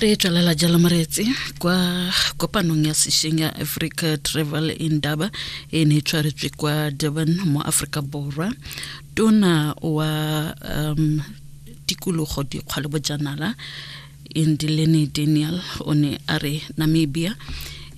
re tswelela jalo moreetsi kwa kopanong ya sešeng ya africa travel indaba e ne e tshwaretswe kwa durban mo aforika borwa tona wa um, tikologo dikgwa le bojanala indilene daniel o ne a re namibia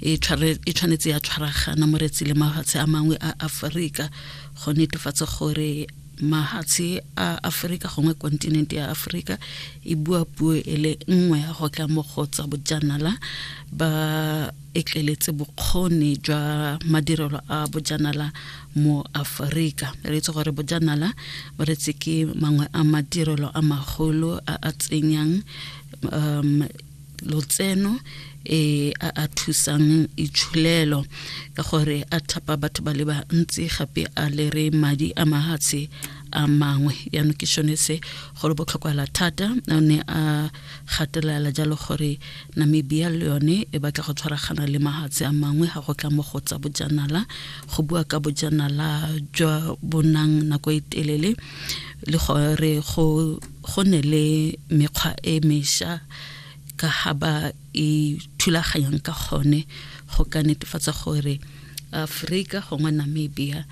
e, e tshwanetse ya tshwaragana moretsi le mafatshe a mangwe a aforika go netefatsa gore mahatshe a aforika gongwe kontinente ya aforika e bua puo e le nngwe go tla mo go tsa bojanala ba etleletse bokgoni jwa madirelo a bojanala mo aforika re itse gore bojanala bo retse ke mangwe a madirelo a magolo a a tsenyang um lotseno e a a thusang itsholelo ka gore a thapa batho ba le bantsi gape a lere madi a mahatshe a mangwe yaanong ke sone se go le botlhokwala thata o ne a gatelela jalo gore namibia le yone e batla go tshwaragana le mahatshe a mangwe ga go tla mo go tsa bojanala go bua ka bojanala jwa bonang nako e telele le gore go ne le mekgwa e mesha ka ga ba e thulaganyang ka gone go ka netefatsa gore aforika gongwe namibia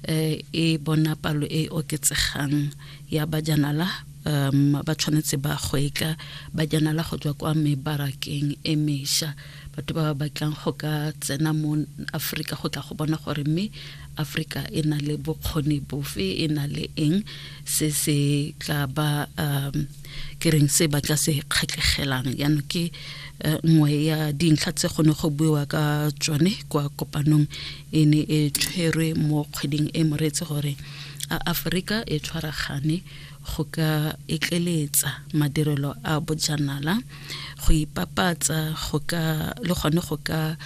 um e bona palo e e oketsegang ya bajanala um ba tshwanetse ba go e ka bajanala go tswa kwa mebarakeng e mesha batho ba ba batlang go ka tsena mo aforika go tla go bona gore mme aforika e na le bokgoni bofe e na le eng se se tla ba um ke reng se ba tla se kgatlhegelang yaanong ke eh, nngwe ya dintlha tse gone go buiwa ka tsone kwa kopanong e ne e tshwerwe mo kgweding e moretse gore a aforika e tshwaragane go ka etleletsa madirelo a bojanala go ipapatsa go ka le gone go ka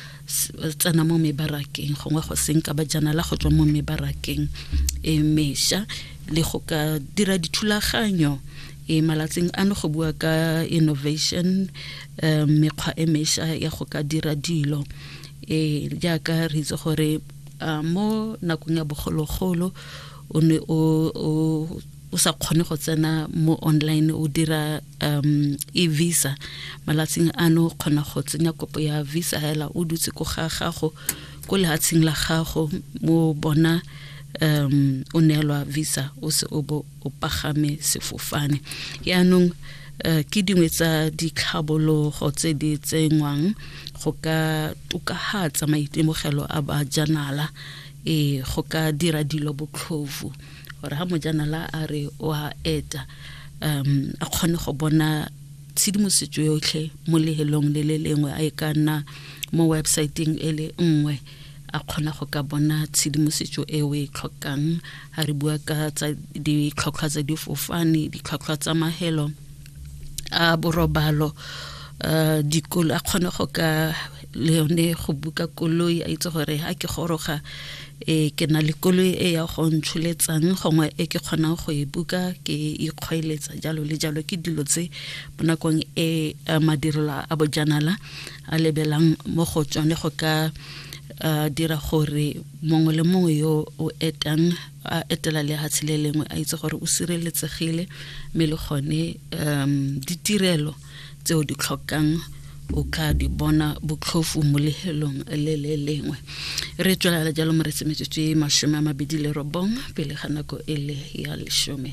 tsena mo mebarakeng gongwe go seng ka bajanala go tswa mo mebarakeng e mesha le go ka dira dithulaganyo e malatsing ano go bua ka innovation um mekgwa e mesha ya go ka dira dilo e jaaka re itse gore mo nakong ya bogologolo o ne o sa kgone go tsena mo online o dira um e-visa malatsing ano kgona go tsenya kopo ya visa hela o dutse ko ga gago ko lehatsheng la gago mo bona um o neelwa visa o se o bo o pagame sefofane yaanong uh, ke dingwe tsa ditlhabologo tse di tsenngwang go ka tokahatsa maitemogelo a bajanala e go ka dira dilo botlhofu gore ga mojanala a re o a eta um a kgone go bona tshedimosetso yotlhe mo lehelong le le lengwe a e ka nna mo websaeteng e le nngwe a kgona go ka bona tshedimosetso e o e tlhokang a re bua ka tsa ditlhotlhwa tsa difofane ditlhotlhwa tsa mahelo a borobalo uh, dikolo a kgone go ka le yone go buka koloi a itse gore a ke goroga e ke na le koloi e ya go ntsholetsang gongwe e ke kgonang go e buka ke ikgweletsa jalo le jalo ke dilo tse mo nakong e madirelo a bojanala a lebelang mo go tsone go ka dira gore mongwe le mongwe yo o etang a etela lehatshe le lengwe a itse gore o sireletsegile mme le gone um ditirelo tseo di tlhokang o ka di bona botlhofu mo lehelong le le lengwe re tswelela jalo mo re tsemetsetse masome a mabedi le robong pele ga nako e le ya lesome